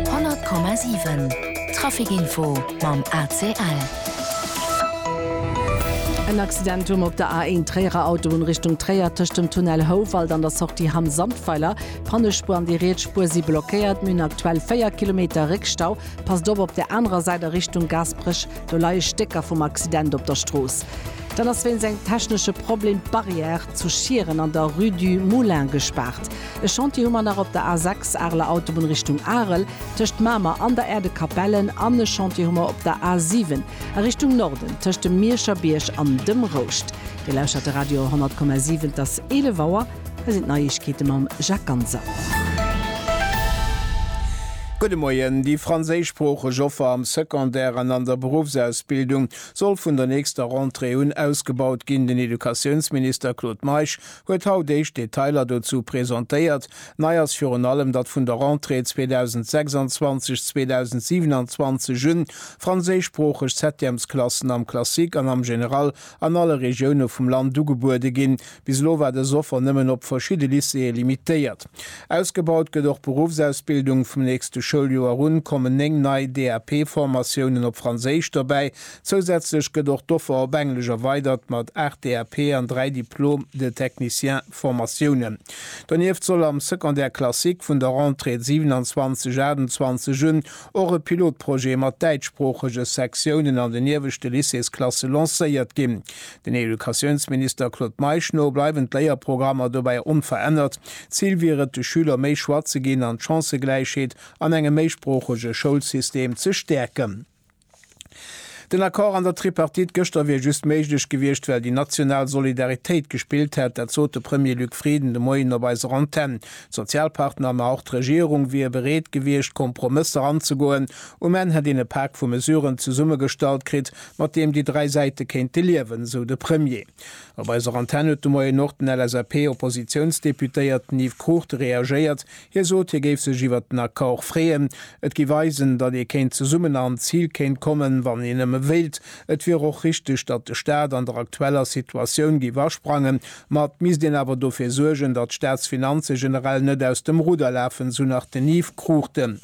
100,7 Trafic Info mam ACL. En Accident um op der A1 Tréierer Autobunn Richtung Tréier tëscht dem Tunnel Houwald an der Sortie Hamm Sandweiler. D'Pannespuer an déi riets Spuer si blockéiert. Mir hunn aktuell 4 Kilometer Réckstau. Passt op op der anerer Säit a Richtung Gaasperech, do leie Stécker vum Accident op der Strooss. Dann ass wéinst engem technesche Problem d'Barrière zu Schieren an der Rue du Moulin gespaart. E Chantier hu mer nach op der A6, Areler Autobunn Richtung Arel, tëscht Mamer an der Aire de Capellen, an e Chantier hu mer op der A7 a Richtung Norden, tëscht dem Mierscher Bierg an dem Rouscht. Dir lauschtert de Radio 100,7, et ass 11 Auer, hei sinn d'Neiegkeete mam Jacques Ganser. Gudde Moien, Déi franséischsproocheg Offer am Secondaire an an der Beruffsausbildung soll vun der nächster Rentrée un ausgebaut ginn. Den Educatiounsminister Claude Meisch huet haut éischt Detailer dozou presentéiert. Nei ass virun allem, datt vun der Rentrée 2026, 2027 un franséischsproocheg Septièmesklassen am Classique an am Général an alle Regioune vum Land ugebuede ginn. Bis elo war dës Offer nëmmen op verschidde Lycéeë limitéiert. Ausgebaut gëtt och d'Beruffsausbildung. Vum nächste Schouljoer un kommen 9 nei DAP-Formatiounen op Franséisch dobäi, Zousätzlech gëtt och d'Offer op Englesch erweidert mat 8 DAP an 3 Diplôme de technicien Formatiounen. Donieft soll am Secondaire classique vun der Rentrée 27 28 un och e Pilotprojet mat däitschsproochege Sektiounen an den ieweschte Lycéesklasse lancéiert ginn. Den Educatiounsminister Claude Meisch no bleiwen d'Léierprogrammer dobäi onverännert. Zil wier et, de Schüler méi Choix ze ginn an d'Chancëgläichheet an engem méisproochege Schoulsystem ze stäerken. Den Accord an der Tripartite gëschter wier just méiglech gewiescht, well déi national Solidaritéit gespillt hätt. Dat sot de Premier Luc Frieden de Moien op eiser Antenn. D'Sozialpartner, ma och d'Regierung wier bereet gewiescht, Kompromësser anzegoen. Um Enn hätt een e Pak vu Mesuren zesummegestallt kritt, mat deem déi dräi Säite kéinte liewen, esou de Premier. Op eiser Antenn huet de Moien och den LSAP-Oppositiounsdeputéierten Yves Crucht reagéiert. Hie sot, hie géif sech iwwert den Accord freeën. Et gi Weisen, datt ee kéint zesummen an d'Zil kéint kommen, wann een nëmme wéilt. Et wier och richteg, datt de Staat an der aktueller Situatioun géif asprangen. Ma et misst een awer dofir suergen, datt d'Staatsfinanze generell net aus dem Rudder lafen, sou nach den Yves Cruchten.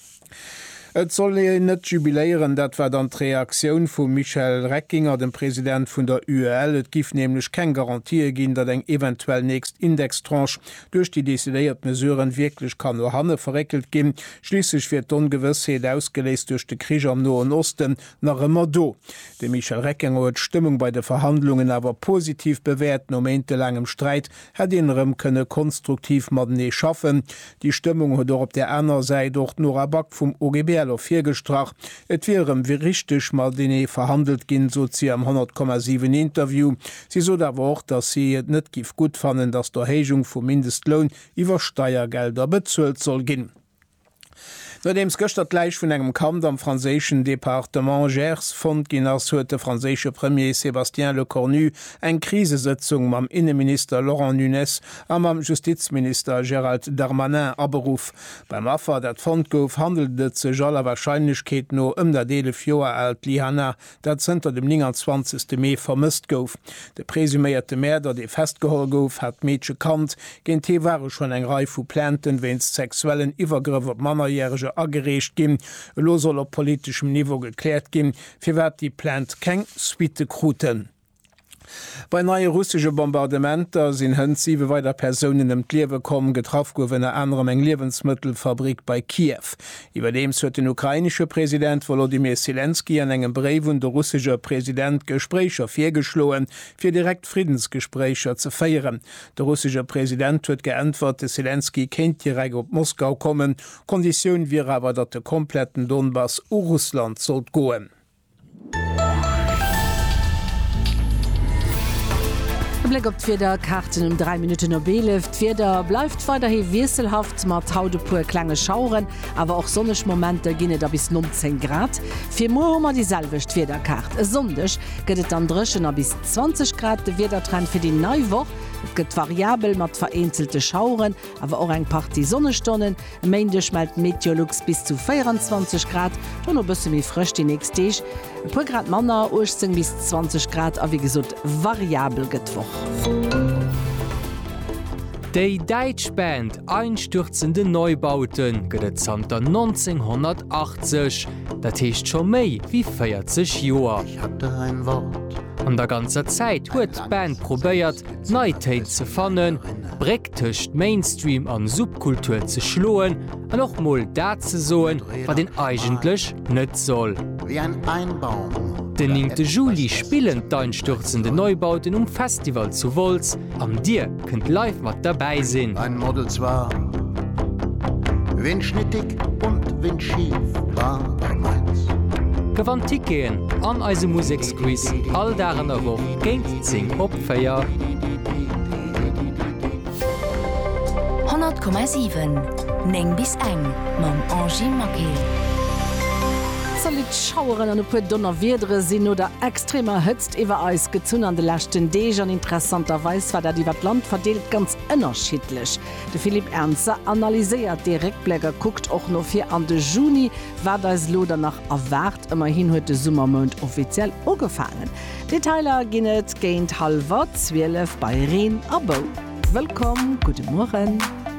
Et soll een net jubiléieren, dat war dann d'Reaktioun vum Michel Reckinger, dem President vun der UEL. Et giff nämlech keng Garantië ginn, datt eng eventuell nächst Indextranche duerch déi decidéiert Mesuren wierklech kann no hanne verréckelt ginn. Schliisslech wier d'Ongewëssheet, ausgeléist duerch de Krich am Noen Osten, nach ëmmer do. De Michel Reckinger huet d'Stëmmung bei de Verhandlungen awer positiv bewäert, no méintelaangem Sträit hätt een erëm kënne konstruktiv matenee schaffen. Déi Stëmmung huet och op där aner Säit och d'Nora Back vum OGBL ervirgestrach. Et wier erëm wéi richteg matenee verhandelt ginn, sot si am 100, 7 Interview. Si sot awer och, datt si et net giff gutt fannen, datt d'Erhéijung vum Mindestloun iwwer Steiergelder bezuelt soll ginn. Nodeems gëschter d'Läich vun engem Kand am franséischen Departement Gers fonnt ginn ass, huet de franséische Premier Sébastien Lecornu eng Krisesëtzung mam Inneminister Laurent Nunez a mam Justizminister Gérald Darmanin aberuff. Beim Affer, dat fonnt gouf, handelt et sech aller Warscheinlechkeet no ëm dat eelef Joer aalt Lyhanna dat zënter dem 29 Mee vermësst gouf. De presuméierte Mäerder, dee festgeholl gouf, hat d'Meedche kannt. Géint hie ware schonn eng Rei vu Plainten wéinst sexuellen Iwwergrëff op Mannerjärege agereecht ginn. Elo soll op politeschem Niveau gekläert ginn, firwat déi Plainte keng Suitte kruten. Bei neie russesche Bombardementer sinn hënt siwe weider Persounen ëm d'Liewe komm. Getraff gouf ënner anerem eng Liewensmëttelfabrick bei Kiew. Iwwerdeems huet den ukrainesche President Wolodymyr Selenskyj an engem Bréif un de russesche President Gespréicher virgeschloen, fir direkt Friddensgespréicher ze féieren. De russesche President huet geäntwert, de Selenskyj kéint direkt op Moskau kommen, Konditioun wier awer, datt de kompletten Donbass u Russland sollt goen. E Bléck op d'Wieder Kaarten um 3 Minutten op 11. D'Wieder bleift weiderhi wiesselhaft mat haut e puer klenge Schaueren, awer och sonneg Momenter ginn et a bis 19 Grad. Fir muer hu mer déi selwecht Wiederkaart. E Sonndeg gëtt et dann dréchen a bis 20 Grad. De Wiedertrend fir déi nei Woch, Et gëtt variabel mat vereenzelte Schaueren, awer och eng Partie Sonnestonnen. E Méindeg mellt d'Meteolux bis zu 24 Grad, dono bësse méi frësch déi nächst Deeg, e puer Grad manner, 18 bis 20 Grad, a wéi gesot variabel gëtt d'Woch. Déi däitsch Band Einstürzende Neubauten gëtt et zanter 1980, dat heescht scho méi wéi 40 Joer. An der ganzer Zäit huet d'Band probéiert, d'Neitéin ze fannen, d'Bréck tëscht Mainstream an Subkultur ze schloen an och mol dat ze soen, wat een eigentlech net soll. Den néngte Juli spillen d'Einstürzende Neubauten um Festival zu Wolz an dir kënnt live mat derbäi sinn. Gewannt Ticketen an eise Museksquiz all Dag an der Woch géint 10 op. 4. 100,7 9 bis eng mam Angy Maquet. Zolitt Schaueren an e puer Donnerwiedere sinn no der extremer Hëtzt iwwer eis gezunn an de leschten Deeg an interessanterweis war dat iwwer d'Land verdeelt ganz ënnerschiddlech. De Philippe Ernzer analyséiert dee Réckbléck a kuckt och no vir an de Juni, wat eis elo dann nach erwaart. Ëmmerhin huet de Summermount offiziell ugefaangen. Detailer ginn et géint hallwer 12 bei Reen a Bou. Wëllkomm, gudde Mueren.